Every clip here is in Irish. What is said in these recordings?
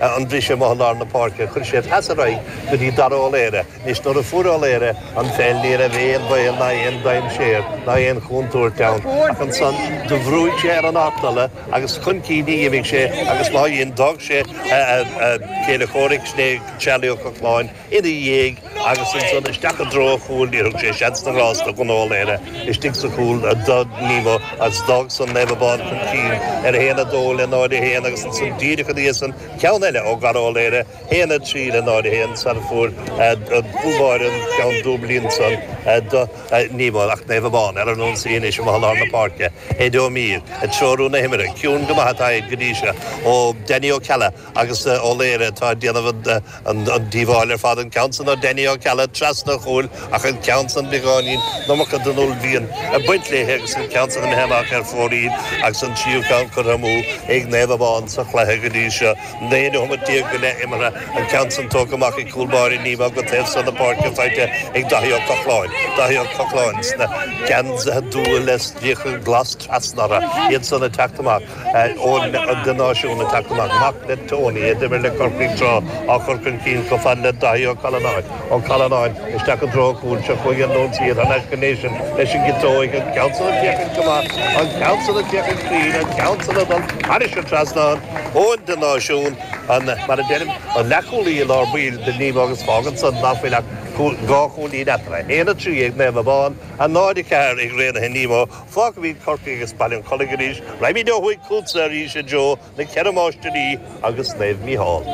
an briseadh amuigh i lár na páirce chuir sé peas ar aghaidh go dtí Dara Ó Laoghaire anois nuair a fuair Ó Laoghaire an pheil ní raibh aon bhaol ná aon dainséar ná aon chúntúirt ann ach ansan do bhrúigh sé ar an artola agus chun cinn a dh'imigh sé agus má dhein d'fhág sé a chéile chomhraic, sin é Charlie Ó Cochláin. ina dhiaidh agus ansan isteach i dtreo an chúil. Níor thug sé seans ná grás do Dhonncha Ó Laoire istigh sa chúl do Nemo agus d'fhág san Naomh Abán chun cinn ar 1-2 le 0-1 agus ansan díreach ina dhiaidh san ceann eile ó Dharragh Ó Laoire, 1-3 le 0-1 sara fuair Dúbháir an ceann dúblaí ansan do Nemo ach Naomh Abán ar an ionsaí anois amuigh i lár na páirce. Ed Ó Mír ag treorú na himeartha. Ciúin go maith atá Ed go dtí seo ó Danny Ó Ceallaigh. Agus Ó Laoire atá ag déanamh an díobháil ar fad, an ceann san ó Danny Ó Ceallaigh trasna an chúil ach an ceann san beagáinín an iomarca den uaillmhian ag baint léi agus an ceann san imithe amach ar fóraoil agus an tríú ceann curtha amú ag Naomh Abán sa chluiche go dtí seo. Naoi nóiméad déag go leith imeartha, an ceann san tógtha amach ag cúl báire Nemo go taobh san na páirce faighte ag Daithí Ó Cochláin. Daithí Ó Cochláin sna geansaithe dubha le stríoca glas trasna orthu, iad san ag teacht amach. Eoin de Náisiún ag teacht amach. Mac le Tony, a d'imir le Corcaigh tráth, á chur chun cinn chomh fada le Daithí Ó Callanáin. Ó Callanáin isteach an treo cúil seo chuig an lántosaí thar n-ais go Nation leis an gciotóig, an ceann san ag féachaint go maith, an ceann san ag féachaint cruinn, an ceann san ag dul thairis an trasnán. Eoin de Náisiún, an, mar a deirim, an leathchúlaí i lár baill do Nemo agus fágann san ná fuil ach dhá chúilín eatarthu, 1, 3 ag Naomh Abán, 0, 4 ag Raonaithe Nemo. Fágfaimíd Corcaigh agus Baile an Chollaigh arís. Raghaimíd ó thuaidh chútsa arís a Joe, na Ceithre Máistirí agus Naomh Mícheál.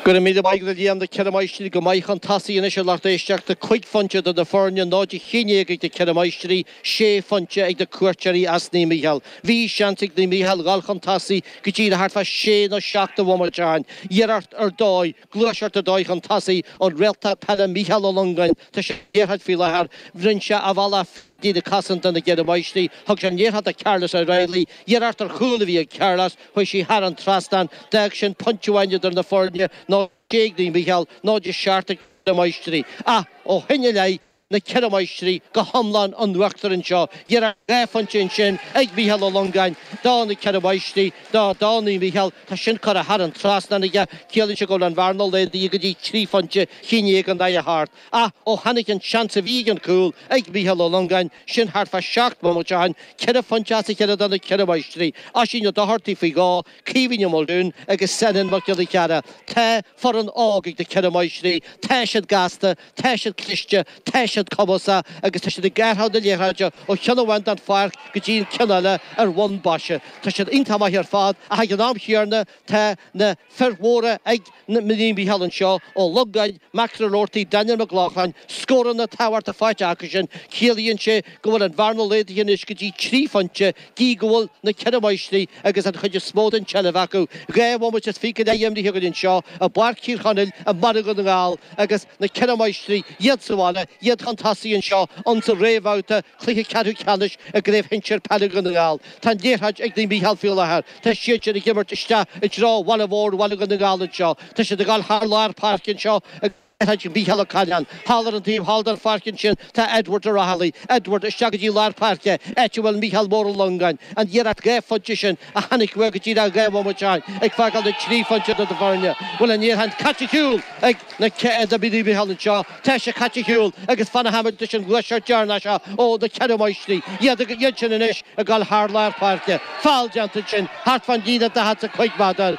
Go raibh míle maith agat a Liam na Ceithre Máistirí go maith chun tosaigh anois a lucht éisteachta, cúig phointe idir na foirne, náid a haon déag ag na Ceithre Máistirí, sé phointe ag na cuairteoirí as Naomh Mícheál. Bhí seans ag Naomh Mícheál dhul chun tosaigh go dtí le thart fá sé nó seacht de bhomaite ó shoin. Iarracht ar dóigh. Gluaiseacht ar dóigh chun tosaigh an réalta peile Mícheál Ó Longáin. Tá sé ag iarraidh faoi láthair. Rinn sé a bhealach fríd líne chosanta na gCeithre Máistrí. Thug sé an liathróid do Carlos O Reilly. Iarracht ar chúl a bhí ag Carlos. Chuaigh sí thar an trasnán. D'fhág sin pointe amháin idir na foirne. 0 6 ag Naomh Mícheál, 0 7 ag na Ceithre Máistrí. Ach ó shin i leith. na Ceithre Máistrí go hiomlán in uachtar anseo. Iarracht dhá phointe ansin ag Mícheál Ó Longáin, do na Ceithre Máistrí, do, do Naomh Mícheál, tá sin curtha thar an trasnán aige, ciallaíonn sé go bhfuil an bhearna laghdaithe go dtí trí phointe, chinn Aodh an aidhe thart, ach ó tháinig an seans a bhí ag an cúl ag Mícheál Ó Longáin, sin thart fá seacht mbomaite ó shin, ceithre phointe as a chéile do na Ceithre Máistrí, Oisín Ó Dochartaigh faoi dhó, Caoimhín Ó Muldoon agus Senan Mac Giolla Chearra. Tá foireann óg ag na Ceithre Máistrí, tá siad gasta, Tá siad cliste, tá siad cumasach agus tá siad ag gearradh na liathróide ó cheann amháin den pháirc go dtí an ceann eile ar bhonn baise. Tá siad iontach maith ar fad ach ag an am chéanna tá na fir mhóra ag Naomh Mícheál anseo, Ó Longáin, McInerney-Roarty, Daniel McLaughlin, scóranna tábhachtacha faighte acusan, ciallaíonn sé go bhfuil an bhearna laghdaithe anois go dtí trí phointe, gidh go bhfuil na Ceithre Máistrí agus an chuid is mó den tseilbh acu, dhá bhomaite is fiche imrithe againn anseo i bPáirc Thír Chonaill i mBaile Dhún na nGall agus na Ceithre Máistrí, iad sa bhaile, iad chun tosaigh anseo insan réamhbhabhta chluiche ceathrú ceannais i gCraobh Shinsear Peile Dhún na nGall. Tá an liathróid ag Naomh Mícheál faoi láthair. Tá siad ag imirt isteach i dtreo bhaile mhór Bhaile Dhún na nGall anseo. Tá siad ag dul thar lár páirce anseo i. Thaidhg Mhícheál Ó Caireáin. Thall ar an taobh thall den pháirc ansin tá Edward Ó Raghallaigh. Edward, isteach go dtí lár páirce, áit a bhfuil Mícheál Mór Ó Longáin. An iarracht dhá phointe sin a tháinig uaidh go díreach dhá bhomaite ó shin ag fágáil na trí phointe idir na foirne bhfuil an liathróid caite ar shiúl ag Naomh Mícheál anseo. Tá sé caite ar shiúl agus fan a tháinig leis an gcloiche deireanach seo ó na Ceithre Máistrí. Iadsan anois ag dul thar lár páirce. Fál déanta ansin thart fán líne daichead 's a cúig méadar.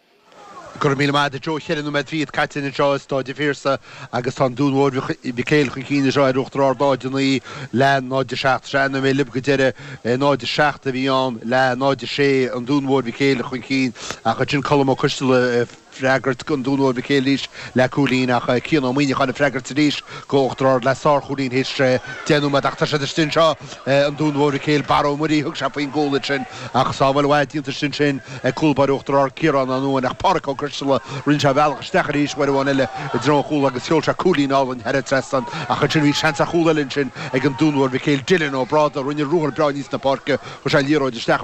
Go raibh míle maith agat Joe ceithre nóiméad fichead caite anseo i Stáid an Phiarsaigh agus tá an Dún Mhóir Mhic Éil chun cinn anseo ar Uachtar Ard 0-9 le 0-7. Is é an nóiméad libh go deireadh 0-7 a bhí ann le 0-6 an Dún Mhóir Mhic Éil chun cinn ach ansin Colm Ó Coistealla ag freagairt don Dún Mhóir Mhic Éil arís le cúilín ach Cian Ó Muineacháin ag freagairt arís do Uachtar Ard le sár chúilín théis deich nóiméad ach tá siad istigh anseo an Dún Mhóir Mhic Éil, Barra Ó Muirí, thug sé faoin gcúl ansin ach sábháil mhaith déanta ansin ag cúl báire Uachtar Ard Ciarán Ó Nuáin ach Páraic Ó Coistealla rinne sé a bhealach isteach arís uair amháin eile i dtreo an chúl agus sheol sé cúilín álainn thar an trasnán ach ansin bhí seans ar chúl eile ansin ag an Dún Mhóir Mhic Éil Dylan Ó Brádaigh rinne ruathar breá aníos na páirce chuir sé liathróid isteach